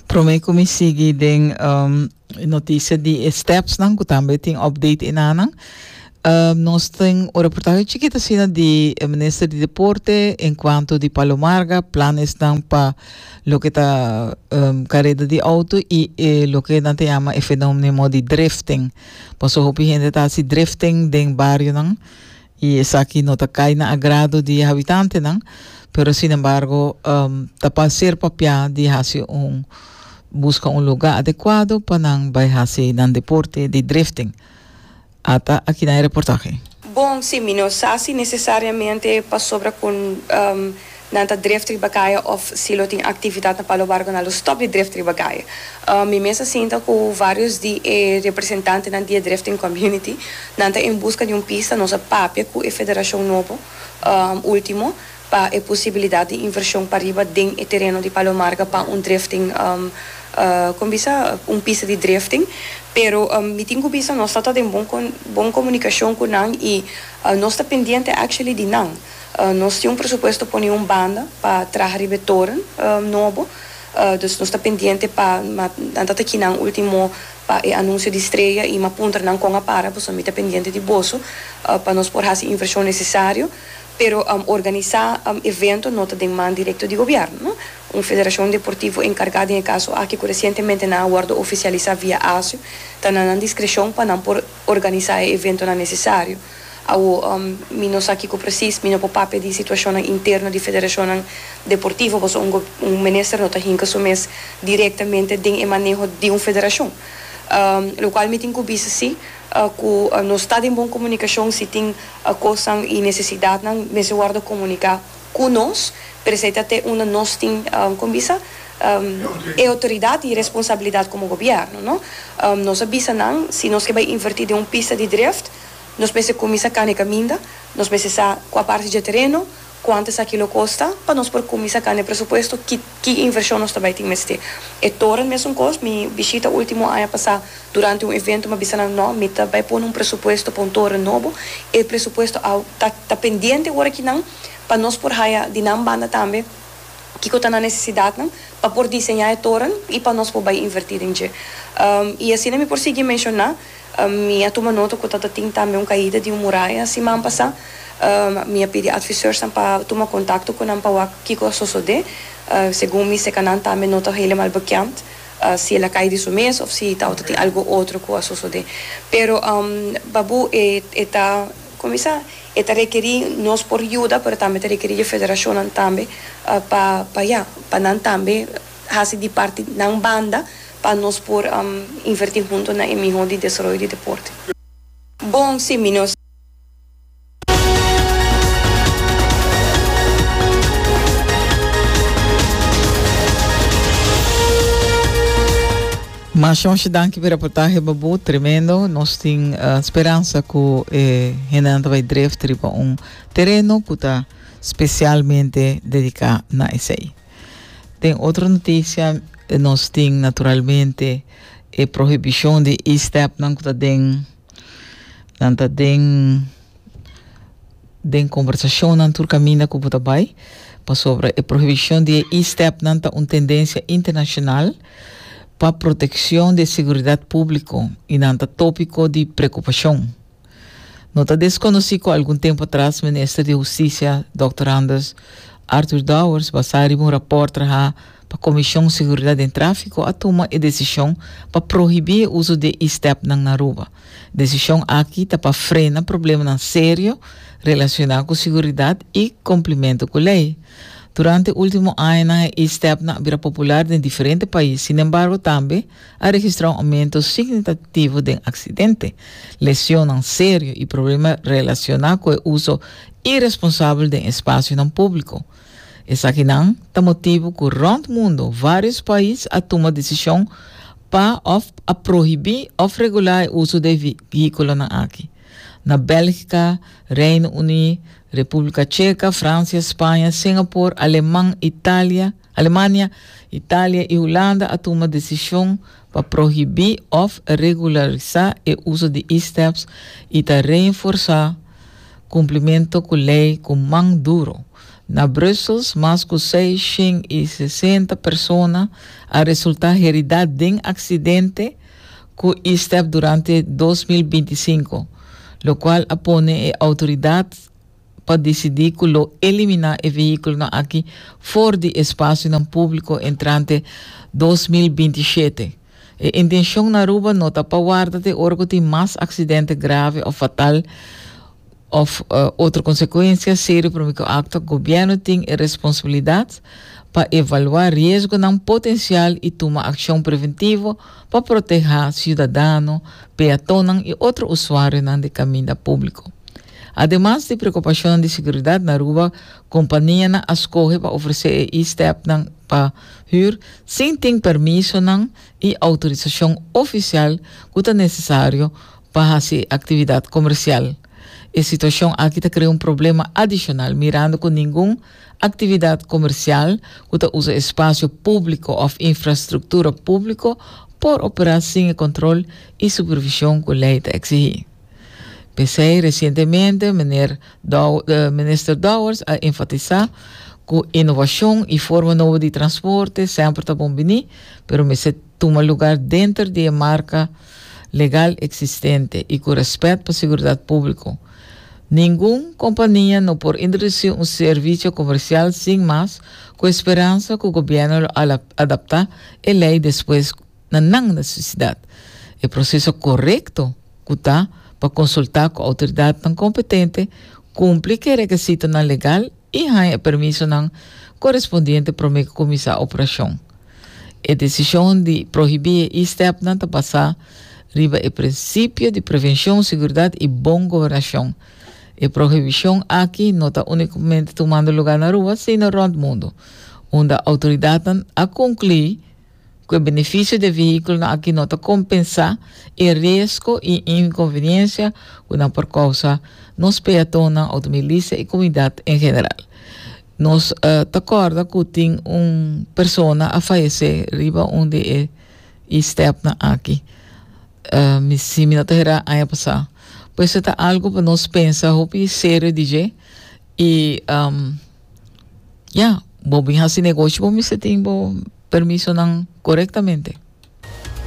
Prome ku mi sigui den um, e notisia di e stepsnan ku tambe tin update enanan. Um, nos tin un reportahe chikit asina di e minister di deporte en kuanto di Palomarga, planesnan pa lo ke ta um, kareda di auto i e lo ke nan ta yama e fenómeno di drifting. Paso hopi hende ta hasi drifting den barionan. y esaki no ta cay na agrado di e habitantenan, pero sin embargo ta pa ser papia di haci un busca un lugar adecuado pa nan bay haci nan deporte di drifting. Ata aki na e reportahe. Bon, si mi no sa si necesariamente pasobra cu. Nan ta dref riba kaya of si lo tin aktividat na Palo Barco nan lo stòp di dref riba kaya. Mi mes a sinta ku vários di e representantenan di e drefting community. Nan ta en buska di un pista. Nos a papia ku e federashon nobo último pa e posibilidat di invershon pariba den e tereno di Palo Marga pa un drefting kon bisa un pista di drefting. Pero mi tin ku bisa nos ta ta den bon komunikashon ku nan i nos ta pendiente actually di nan. Nos tin un presupuesto pone un banda pa traha riba e toren nobo, dus nos ta pendiente pa nan ta taki nan ultimo pa e anuncio di streya y m'a puntra nan con a para, boso mi ta pendiente di boso pa nos por haci inversion necesario, pero organisa evento no ta den man directo di gobierno, no. Un federacion deportivo encarga den e caso aki cu recientemente nan a wordo oficialisa via ASU ta na nan discrecion pa nan por organisá e eventonan nesesario. Awo, mi no sa kiko presis, mi no por papia di situashonnan interno di federashonnan deportivo, pasobra un go, un minister no ta hinka su mes direktamente den e maneho di un federashon. Lokual mi tin ku bisa si ku nos ta den bon komunikashon, si tin kosnan i nesesidatnan mester wordo komuniká cu nos, pero esey ta te unda nos tin, como bisa? e autoridad y responsabilidad como gobierno, no? Nos a bisa nan, si nos ke bai inverti den un pista di drift, nos mester cuminsa cane caminda, nos mester sa cua parti dje tereno, cuanto esaki lo costa, pa nos por cuminsa cane presupuesto, ki. Ki invershon nos ta bai tin mester? E toren mesun kos. Mi bishita ultimo aña pasá durante un evento mi a bisa nan, No, mi ta bai pone un presupuesto pa un toren nobo. E presupuesto a ta ta pendiente ora ki nan pa nos por haya di nan banda tambe kiko ta nan nesesidatnan pa por diseñá e toren i pa nos por bai invertí den dje. I asina mi por sigui menshoná. Mi a tuma nota cu tatatin tambe un caida di un muraya siman pasa. Mi a pidi adviseursan pa tuma contacto cu nan pa wak kico a sosode. Segun mi seca nan tambe no ta helemal bekend si el a cay di su mes of si taotatin algo otro cu a sosode. Pero Babu e e ta como mi sa e ta requeri nos por yuda pero tambe ta requeri dje federacionnan tambe pa pa ya pa nan tambe hasi di parti nan banda pa nos por inverti huntu na e mihó di desaroyo di deporte. Bon, sí, mi no. Mas Jorge danki pi reportahe babu, tremendo. Nos tin uh, speransa ku e hendenan ta bai dreft riba un tereno ku ta specialmente dedica na esei. Den otro noticia nos tin naturalmente e prohibicion di e-step nan cu ta den nan ta den den conversacionnan tur caminda cu bo ta bay pasobra e prohibicion di e e-step nan ta un tendencia internacional pa proteccion di e seguridad publico y nan ta topico di preocupacion. No ta desconoci cu algun tempo atras Minister di Husticia Dòkter Anders Arthur Dowers basá riba un raport trahá pa Comision Seguridad den Trafico a tuma e decision pa prohibí e uso di e stepnan na Aruba. Decision aki ta pa frena problemanan serio relacioná cu seguridad i cumplimento cu ley. Durante ultimo añanan e e-stepnan a bira popular den diferente pais, sinembargo tambe, a registrá un oumento signitativo den aksidente, lesionnan serio i problema relasioná ku e uso iresponsabel den espasionan públiko. Esakinan ta motibu ku rònt mundu vários pais a tuma desishon pa òf a prohibí òf regulá e uso d'e vehíkulonan aki. Na Bèlgika, Reino Uní, Repúblika Cheka, Fransia, Spaña, Singapor, Aleman, Italia, Alemania, Italia i Hulanda a tuma desishon pa prohibí òf regularisá e uso di e-steps i ta reenforsá kumplimento ku lei ku man duro. Na Brussels, mas ku seis shen i sesenta persona a resultá heridá den aksidente ku e-step durante dos mil binti sinku, lokual a pone e outoridat, pa disidí ku lo eliminá e vehíkulonan aki for di espasionan públiko entrante dos mil binti i shete. E intenshon na Aruba no ta pa warda te ora ku tin mas aksidente grave òf fatal òf otro konsekuensia serio promé ku aktua. Gobièrnu tin e responsabilidat pa evaluá riesgonan potensial i tuma akshon preventivo pa protehá siudadano, peatonnan i otro usuarionan di kaminda públiko. Ademas di preokupashonnan di seguridat na Aruba, kompanianan a skohe pa ofresé e e-stepnan pa hür sin tin permisonan i outorisashon ofisial ku ta nesesario pa hasi e aktividat komersial. E situashon aki ta krea un problema adishonal, mirando ku ningun aktividat komersial ku ta usa espasio públiko òf infrastruktura públiko por operá sin e kòntròl i supervishon ku lei ta eksihí. P'esei resientemente meneer Dow, eh, minister Dowers a enfatisá ku inovashon i forma nobo di transporte semper ta bon biní, pero mester tuma lugar denter di e marka legal eksistente i ku rèspèt pa siguridat públiko. Ningun kompania no por introdusí un servisio komersial sin mas, ku e speransa ku gobièrnu lo a adaptá e lei despues na nan nesesidat. E proseso korekto ku ta pa konsultá ku outoridatnan kompetente, kumpli ku e rekesitonan legal i haña e permisonan korespondiente promé ku kuminsá operashon. E desishon di prohibí e e-stepnan ta basá riba e prinsipio di prevenshon, sigurdat i bon gobernashon. E prohibishon aki no ta únikamente tumando lugá na rua sino rònt mundu, unda outoridatnan a konklui, Ku e benefisio di e vehíkulonan akí no ta kompensá e resko i inkonveniensia ku nan por kousa nos peatonnan, outomobilista i komunidat en general. Nos ta kòrda ku tin un persona a fayesé riba un di e e stèpnan akí, mi si mi no ta herá aña pasá. Pues e ta algu pa nos pensa hopi serio di dje i. Ya, bo bin hasi negoshi bo mester tin bo permisonan korektamente.